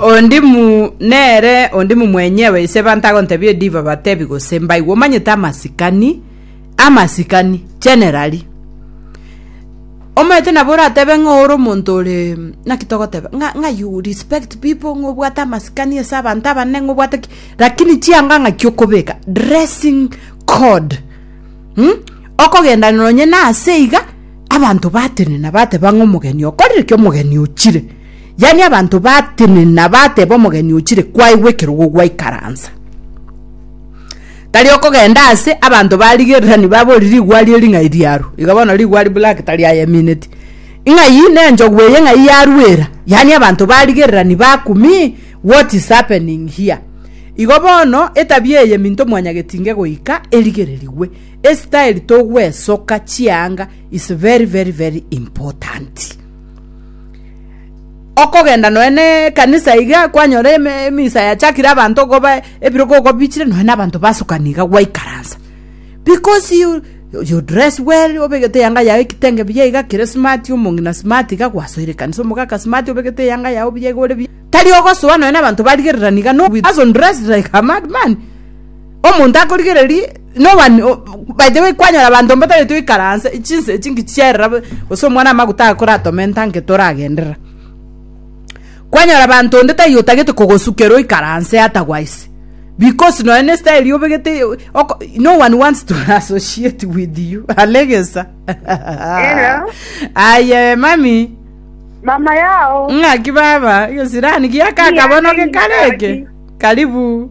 Ondimu nere ondimu mwenyewe ise banto agontebie div abatebi gose mbaigwe omanyete amasikani amasikani generally omanyete nabo oratebe ng'a ore omonto ore naki togoteba ng'a ng'a you respect people ng'a obwate amasikani ase abanto abanene ng'a obwate ki lakini chianga ng'aki okobeka dressing code mh okogenda nonye nase iga abanto batenena bateba ng'a omogeni okorire ki omogeni ochire. Yaani abanto batenena bateba omogeni ochire kwaigwa ekerogo gwaikaransa. Tari okogenda ase abanto barigererani babori rigwa arie ring'ai riaru. Iga bono rigwa ari black tari ayemineti. Ing'ai ne enchogu eye ng'ai yaruera. Yaani abanto barigererani bakumi what is happening here. Igo bono etabia eye minto mwanyagetinge goika erigererigwe. Estyle togwesoka chianga is very very very important. Okogenda nonya na ekanisa iga kwanyora emisa yachakire abanto koba ebiro kogobichire nonya na abanto basukana iga gwaikaransa because you you dress well obegete eyanga yago ekitenge buya iga kere smart omong'ina smart iga gwasoire ekanisa omogaka smart obegete eyanga yago buya iga ore buya tari ogosoa nonya na abanto barigererani iga no we also dress like a madman. Omonto akorigereria nowa by the way kwanyora abanto mbatareti goikara anse chinsa echi ngichierera gose omwana amaguta aye koratome entanke toragenderera kwanyora abanto onde taiyo otagete kogosukera oikare anse otherwise because nonya ne style obegete oko no one wants to associate with you alegesa Hello. aye mami Mama yao. ng'aki baba gesirani giakaka bono Ng'aki, gekareke ng'aki. karibu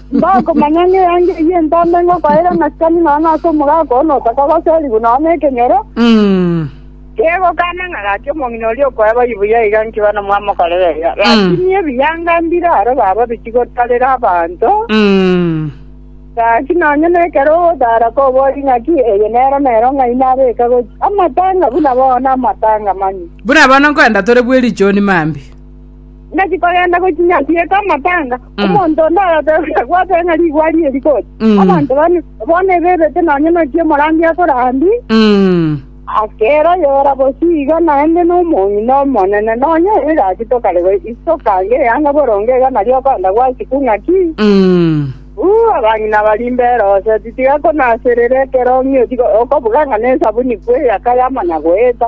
Mbakomanya ng'a eanga eyio entambe ngokoera amasikani nonya ase omogaka oo notaka goserigwa nonya nekenyoro, kegokana ng'a gaki omong'ina oria okoe bayi buya iga nkiba nomwamokorera iga. Rakini ebiyanga mbiraro baba bichi gotarera abanto, gaki nonya nekero ogotara kobori ng'aki eye nero nero ng'ai nabeka gochia amatanga buna bono amatanga manye. Buna bono nkoenda tore bw'erichoni mambia. Naki kogenda gochinya nsiete amapanga, Mm. omonto onde agatebia gwateba ng'a rigwari eri goti. Mm. Abanto bane bono ebebete nonye nokia omorangi akorandi, Mm. akera yora bosio iga naende nomong'ina omonene nonye egachito kare go isokange eyanga boronge iga nario okonda gwasiku ng'aki Mm. uu abang'ina barimbe eroseti tiga konaserera ekerong'io tiga okobuga ng'a nesabuni kweyaka yamanya goeta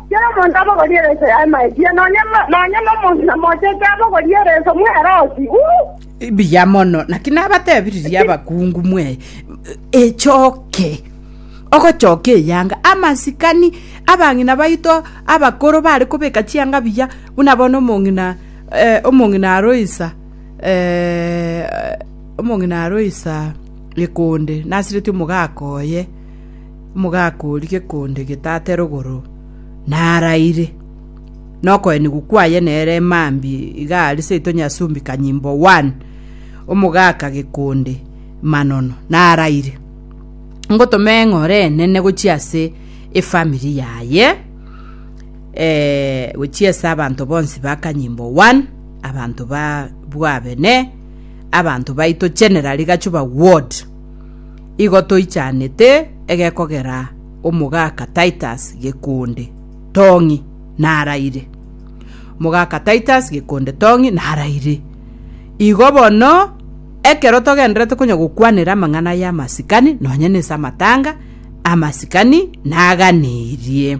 Kera omonto abogorie ereso yaye maechie, nonya nonya nomonto namochete abogorie ereso mwerosi. Uh! Mbuya mono, naki nabatebiririe abakungu mwe echoke ogochoka eyanga amasikani abang'ina baito abakoro bare kobeka chianga buya buna bono omong'ina eh, omong'ina aroisa eh, omong'ina aroisa ekonde nasireti omogaka oye Mogakoori gekonde getate rogoro, naraire. Nokoenigwa kwaye nere emambi iga aria seito Nyasumbi Kanyimbo one, omogaka gekonde manono, naraire. Ngotoma eng'ora enene gochia ase efamiri yaye, gochia ase abanto bonsi ba Kanyimbo one, abanto ba bwabene, abanto baito generally gacho ba ward. Igo toichanete egekogera omogaka Titus gekonde Tong'i naraire. Mogaka Titus gekonde Tong'i naraire. Igo bono ekero togenderete konya gokwanera amang'ana y'amasikani, nonye nese amatanga, amasikani naganeirie.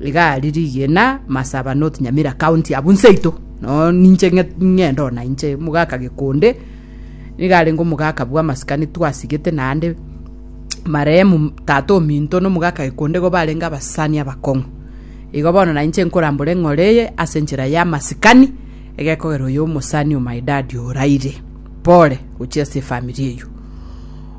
Iga ari rigena Masaba North Nyamira county abwo nseito no ninche ng'ende ona inche omogaka gekonde niga arenge omogaka bwa masikani twasigete naende marehemu tata ominto no omogaka gekonde igo barenge abasani abakong'u igo bono na inche nkorambore ng'ore eye ase enchera ya masikani egekogera oyo omosani o my dad oraire pore gochia ase efamiri eywo.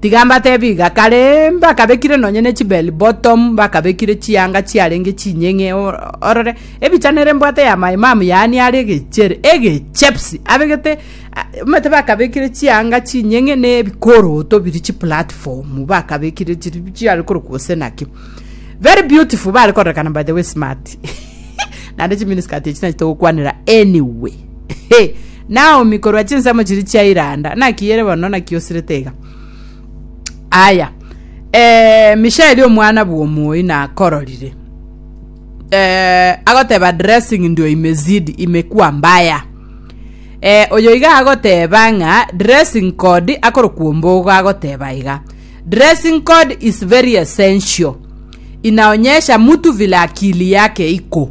Tiga mbatebi iga, kare mbakabekire nonye ne chibell bottom, bakabekire chianga chiarenge chinyeng'e o- orore, ebichani ere mbwate ya my mum yaani are egechere, egechepsi, abegete a- omanyete bakabekire chianga chinyeng'e na ebikoroto biri chiplatform bakabekire chiri bi- chiare korokwa gose naki. Very beautiful, bare kororekana by the way smart, naende chimini skirt echi nachia togokwanera anyway. He! Naomi korwa chinsemo chiria chia Iranda, naki ere bono, naki osirete iga. Aya. Eh, Mishaeli omwana bw'omoi nakororire. Eh, agoteba dressing ndio imezidi imekuwa mbaya. Eh, oyo iga agoteba ng'a dressing code akorokwa ombogo agoteba iga. Dressing code is very essential. Inaonyesha mtu vile akili yake iko.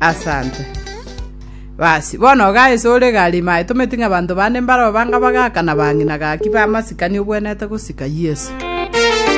Asante. Basi, bono ogaa ise ore egari ime aye tometi ng'a abanto bande mbarabwo banga bagaka na bang'ina gaki bamasikani obwenerete gosika Yeso.